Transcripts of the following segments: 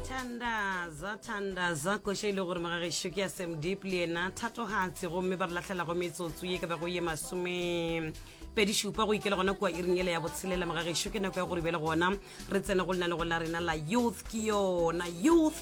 thandaza thandaza koša e le gore magagešo ke ya sam deep le yena thatogatse gomme ba re latlhelago metsotso ye ka bago ye masome pedi šupa go ikela gona kua iring ele ya botshelela magagešo ke nako ya gore bele gona re tsene go lenanego la rena la youth ke yona youth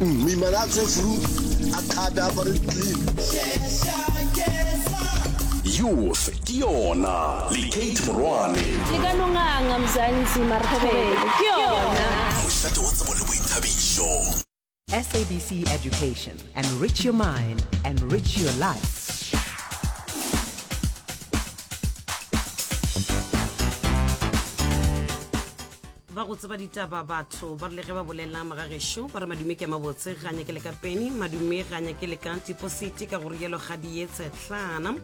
Moimana a tswe flu, a kgate, a apare di-clean. Youth ke yona le Kate Morwane. Le ka no nganga Mzansi Marhobele ke yona. Mošate wa tsebo le boithabišo. SABC Education, enrich your mind, enrich your life. ba go tseba ditaba batho ba rile ge ba bolela magagešo ba re madume ke a mabotse ga nyake le ka peni madume ga nyake le ka tipositi ka gore yelo ga di ye tshetlana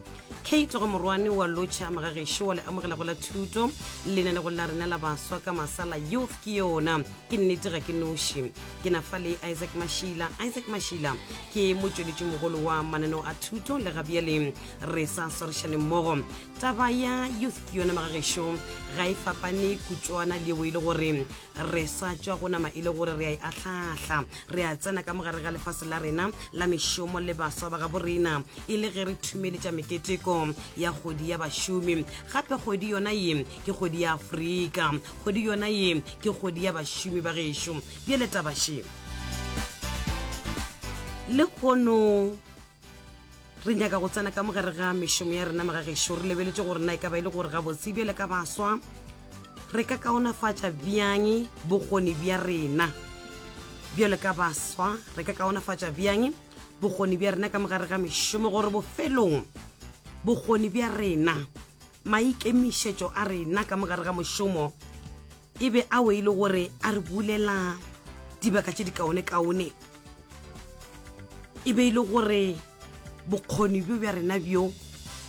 kate go morwane wa lotšha magagešo wa le amogela go la thuto lena le go la rena la baswa ka masala youth ke yona ke nnete ga ke noši ke na fa le isaac mashila isaac mashila ke motsweletši mogolo wa mananeo a thuto le gabjaleng re sa swarešane mmogo Taba ya youth ke yona magagešo ga e fapane kutšwana le yeo e le gore re sa tšwa go nama e le gore re a e ahlahla re a tsena ka mogare ga lefase la rena la mešomo le baswa ba ga borena e le ge re thumeletša meketeko ya kgodi ya bašomi gape kgodi yona ye ke kgodi ya afrika kgodi yona ye ke kgodi ya bašomi ba gešo bjale tabaše le kono re nyaka go tsena ka mogare ga mešomo ya rena magagešo re lebeletse gore na e ka ba e le gore gabotse bjale ka baswa re ka kaonafatša bjang bokgoni bja rena bjale ka baswa re ka kaonafatša bjang bokgoni bja rena ka mogare ga mešomo gore bofelong bokgoni bja rena maikemišetšo a rena ka mogare ga mošomo E be a we e le gore a re bulela dibaka tše dikaone-kaone, e be e le gore bokgoni bjo bja rena bjo,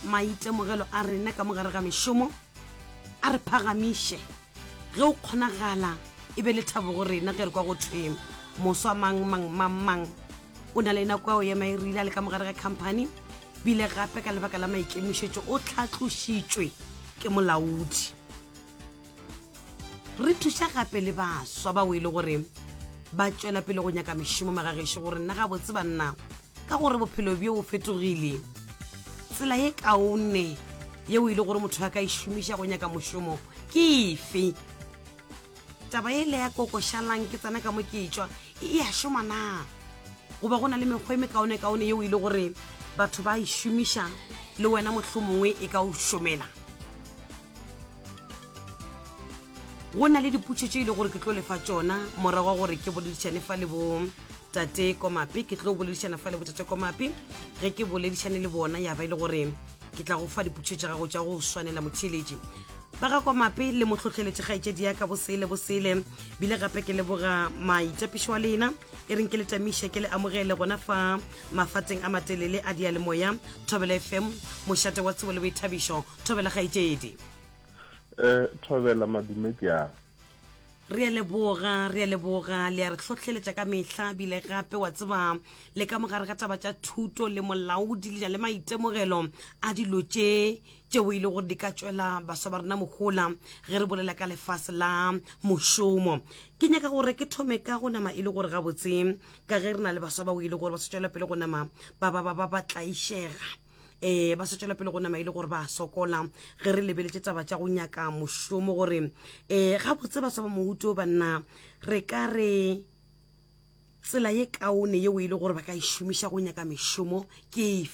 maitemogelo a rena ka mo gare ga mešomo, a re phagamiše, ge go kgonagala e be lethabo go rena ge re kwa go thwe moswa mang mang mang mang o na le nako ya go ema e rile a le ka mo gare ga khamphani, bile gape ka lebaka la maikemišetšo o tlhatlošitšwe ke molaodi. re thuša gape le baswa bao e le gore ba tšwela pele go nyaka mešomo magagešo gore nna gabotse banna ka gore bophelo bjo o fetogile tsela ye kaone yeo e le gore motho a ka e šomiša go nyaka mošomo ke efe taba e le ya kokošalang ke tsena ka mo ke e tšwa e a šoma na goba go na le mekgwa e mekaonekaone yeo e le gore batho ba e šomiša le wena mohlomongwe e ka o šomela go na le diputšo tše e le gore ke tlo lefa tšona morago wa gore ke boledišane fa le bo tate komape ke tlo boledišana fa le botate komape ge ke boledišane le bona ya ba e le gore ke tla go fa diputšo tša gago tša go swanela motheeletši ba ga komape le motlhotlheletše kgaetšedi ya ka bosele bosele bile gape ke leboga maitapišo wa lena e reng ke le tamiše ke le amogele gona fa mafateng a matelele a dialemoya thobelo fm mošate wa tsebo le boithabišo thobela kgaetšedi um thobela madume ke a re a leboga re a leboga le a re hlohleletša ka mehla bile gape wa tseba le ka mogare ga taba tša thuto le molaodi le ja le maitemogelo a dilo tše tšeo e le gore di ka tšwela baswa ba rena mohola ge re bolela ka lefase la mošomo ke nyaka gore ke thome ka go nama e le gore gabotse ka ge re na le baswa bao e le gore ba se tšwela pele go nama ba ba ba ba ba tlaišega eh ba se tswela pele go nama e le gore ba sokola ge re lebeletše taba tša go nyaka mošomo gore um eh, gabotse ba saba mohuto banna re ka re tsela ye kaone yeo e le gore ba ka e šomiša go nyaka mešomo ke efe